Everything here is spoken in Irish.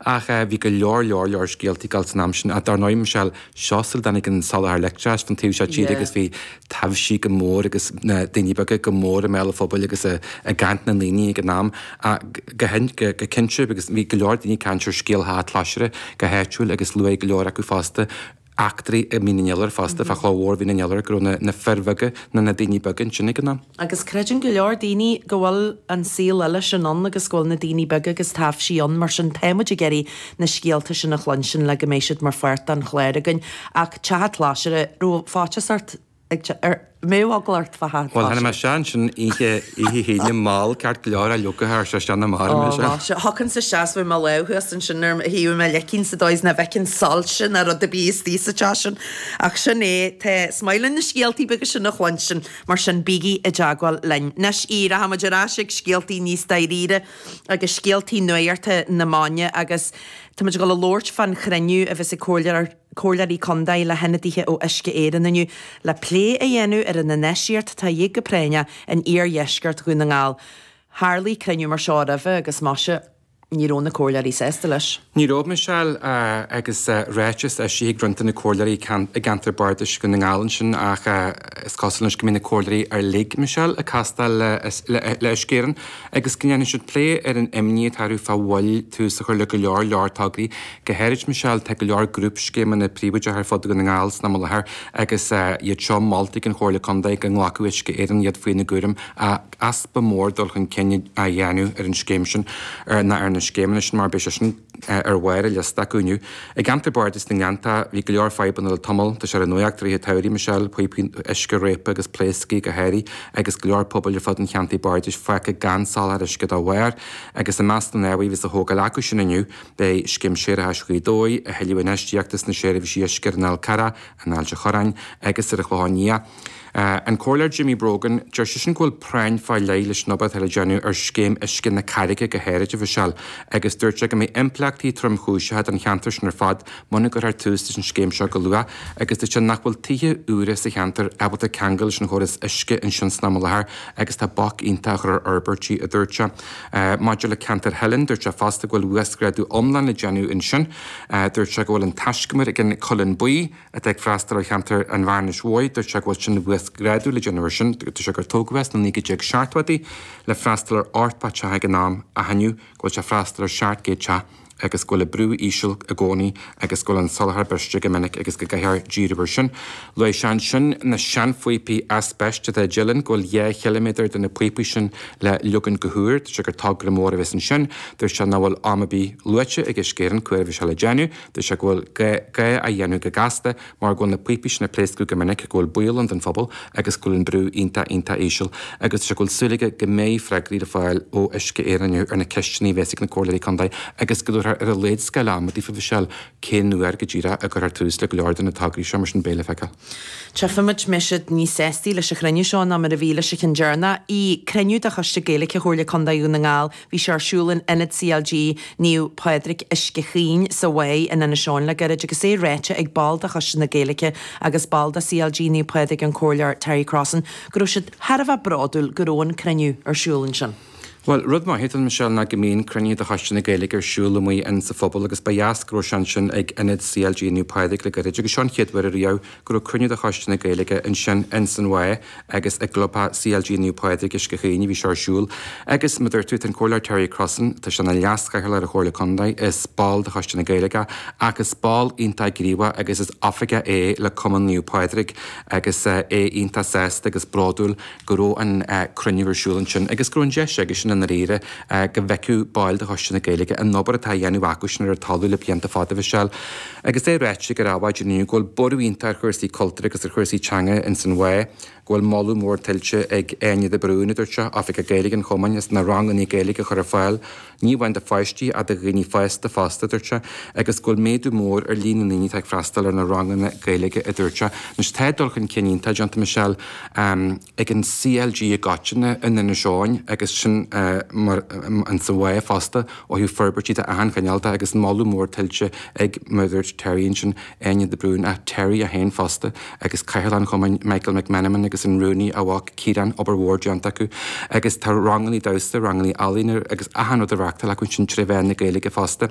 Ach bhí go leor, leor, leor scéaltaí ag dul san am sin. Ach dar ndóigh, Michelle, seo sula dtáinig an soláthar leictreachais don taobh seo tíre agus bhí taibhsí go mór agus na daoine beaga go mór i mbéal an phobail agus i gcaint na ndaoine ag an am go cinnte agus bhí go leor daoine ag caint ar scéal Theach an Chláisire go háitiúil agus luaigh go leor acu fosta eachtraí i Mín an Iolair fosta, fá Chloch Mhór Mhín an Iolair, go raibh na fir bheaga nó na daoine beaga ansin ag an am. Agus creideann go leor daoine go bhfuil an saol eile sin ann agus go bhfuil na daoine beaga agus taibhsí ann, mar sin tá muid ag iarraidh na scéalta sin a chluinstin le go mbeidh siad mar pháirt den chlár againn. Ach Teach an Chláisire, raibh faitíos ort? Bheadh eagla ort fá hatá sé. Bhuel, tháinig mé anseo ansin oíche hAoine mall ceart go leor, aillocaithe thar thar thar na mara mé ansin. Ó, sea, thógfainnse suas mo lámh thuas ansin ar thaobh mo leicinn sa dóigh is nach bhfeicinn soilse ná rud ar bith istigh sa teach sin. Ach sin é, tá, is maith linn na scéaltaí beaga sin a chluinstin, mar sin bígí i dteagmháil linn. Anois, Aodh, rachaimid ar ais ag scéaltaí níos dáiríre agus scéaltaí nuachta na maidine agus táimid ag dul a labhairt fán chruinniú a bheas ag Comhairleoir. Comhairleoirí Contae le hionadaithe ó Uisce Éireann inniu le plé a dhéanamh ar an infheistíocht atá a dhíth go práinneach in iardheisceart Dhún na nGall. Tharlaigh cruinniú mar seo roimhe agus más ea, ní raibh na Comhairleoirí sásta leis. Ní raibh, Michelle, agus ráiteas eisithe ag roinnt de na Comhairleoirí i gceantar Bardais Dhún na nGall ansin ach is cosúil anois go mbeidh na Comhairleoirí uilig, Michelle, ag castáil le Uisce Éireann agus go ndéanfaidh siad plé ar an imní atá orthu fá mhoill tús a chur le go leor leor tograí Go háirid, Michelle, tá go leor grúpscéimeanna príobháideacha ar fud Dhún na nGall san am i láthair agus iad seo molta ag an Chomhairle Contae go nglacfadh Uisce Éireann iad faoina gcúram ach easpa mór dul chun cinn á dhéanamh ar an scéim sin nó ar na scéimeanna sin mar beidh sé sin ar bharr an liosta acu inniu. I gceantar Bardais na nGleanntach bhí go leor fadhbanna le tamall, tá sé ar an nuacht i rith an tsamhraidh, Michelle, píopaí uisce réabtha agus pléasctha go háirithe agus go leor pobail ar fud an Cheantair Bardais fágtha gan soláthar uisce dá bharr agus i measc na n-ábhar a bheas á thógáil acu sin inniu Beidh scéim séarachais Ghaoth Dobhair, a thuilleadh infheistíochta sna seirbhísí uisce ar an Fhál Carrach, in Ailt a' Chorráin agus ar an Chlochán Liath. An Comhairleoir Jimmy Brogan, deir seisean go bhfuil práinn fá leith leis an obair atá le déanamh ar scéim uisce na Carraige go háirid, a Mhichelle, agus dúirt sé go mbeidh impleachtaí tromchúiseacha don cheantar sin ar fad muna gcuirthear tús leis an scéim seo go luath agus deir sé nach bhfuil tithe úra sa cheantar ábalta ceangal leis an chóras uisce ansin san am i láthair agus tá bac iontach á chur ar fhorbairtí, a dúirt sé. Maidir le ceantar Theilinn, dúirt sé fosta go bhfuil uasghrádú iomlán le déanamh ansin. Dúirt sé go bhfuil an taiscumar ag an Chuilleann Buí, atá ag freastal ar cheantar an Bhearnais Mhóir, dúirt sé go bhfuil sin uasghrádú le déanamh air sin. Dúirt sé gur tógadh é sna 1970idí le freastal ar ochtó teach ag an am, ach inniu go bhfuil sé ag freastal ar sheacht gcéad teach, agus go bhfuil an brú íseal i gcónaí agus go bhfuil an soláthar briste go minic agus go gcaithfear díriú air sin. Luaigh sé ansin na seanphíopaí aispeiste a Dhamien, go bhfuil dhá chiliméadar de na píopaí sin le leagan go húr. Dúirt sé gur togra mór a bheas ansin. Dúirt sé nach bhfuil am ar bith luaite ag Uisce Éireann cá huair a bheas seo le déanamh. Dúirt sé go bhfuil gá é a dhéanamh go gasta mar go bhfuil na píopaí sin ag pléascadh go minic, go bhfuil baol ann don phobal agus go bhfuil an brú iontach, iontach íseal. Agus tá sé go bhfuil súil aige go mbeidh freagraí le fáil ó Uisce Éireann inniu ar na ceisteanna a bheas ag na Comhairleoirí Contae agus go dtabharfar ar a laghad scála ama daofa fá cén uair go díreach a gcuirfear tús le go leor de na tograí seo mar sin beidh le feiceáil. Tchífidh muid, Michelle, níos sástaí leis an chruinniú seo ná mar a bhí leis an cheann deireanach, ii, cruinniú de Choiste Gaeilge Chomhairle Contae Dhún na nGall, Bhí sé ar siúl in Ionad CLG Naomh Pádraig, Uisce Chaoin, sa Mhaigh in Inis Eoghain le gairid agus é ráite ag ball de Choiste na Gaeilge agus ball de CLG Naomh Pádraig, an Comhairleoir Terry Crossan, go raibh siad thar a bheith bródúil go raibh an cruinniú ar siúl ansin. Bhuel, rud maith atá ann, Michelle, ná go mbíonn cruinnithe de Choiste na Gaeilge ar siúl amuigh in sa phobal agus ba dheas go raibh sé ansin ag Ionad CLG Naomh Pádraig le gairid agus seo an chéad uair ariamh go raibh cruinniú de Choiste na Gaeilge ansin ins an Mhaigh agus i gclubtheach CLG Naomh Pádraig Uisce Chaoin a bhí seo ar siúl agus mar a dúirt tú tá an Comhairleoir Terry Crossan, tá sé ina Leas-Chathaoirleach ar an Chomhairle Contae is ball de Choiste na Gaeilge ach is ball iontach gníomhach agus is oifigeach é le Cumann Naomh Pádraig agus é iontach sásta agus bródúil go raibh an cruinniú ar siúl ansin agus go raibh an deis aige sin i ndáiríre go bhfeicfeadh baill de Choiste na Gaeilge an obair atá á dhéanamh acu sin ar an talamh le blianta fada, Michelle. Agus é ráite aige ar adhmhaidin inniu go bhfuil borradh iontach ar chúrsaí cultúir agus ar chúrsaí teanga ins an Mhaigh, go bhfuil moladh mór tuillte ag Áine de Brún, a dúirt sé, Oifigeach Gaeilge an Chumainn, as na ranganna Gaeilge a chur ar fáil. ní amháin do pháistí ach do dhaoine fásta fosta, a dúirt sé, agus go bhfuil méadú mór ar líon na ndaoine atá ag freastal ar na ranganna Gaeilge, a dúirt sé. Anois, tá dul chun cinn iontach déanta, Michelle, ag an CLG i gcoitinne in Inis Eoghain agus sin mar atá sa Mhaigh fosta ó thaobh forbairtí de achan chineál agus moladh mór tuillte ag mar a dúirt Terry ansin. Áine de Brún, ag Terry é féin fosta, agus Cathaoirleach an Chumainn, Michael McMenamin, agus an Rúnaí, a mhac, Ciarán, obair mhór déanta acu. Agus tá rangannaí damhsa, rangannaí ealaíne agus achan rud á reachtáil acu ansin tré mheán na Gaeilge fosta.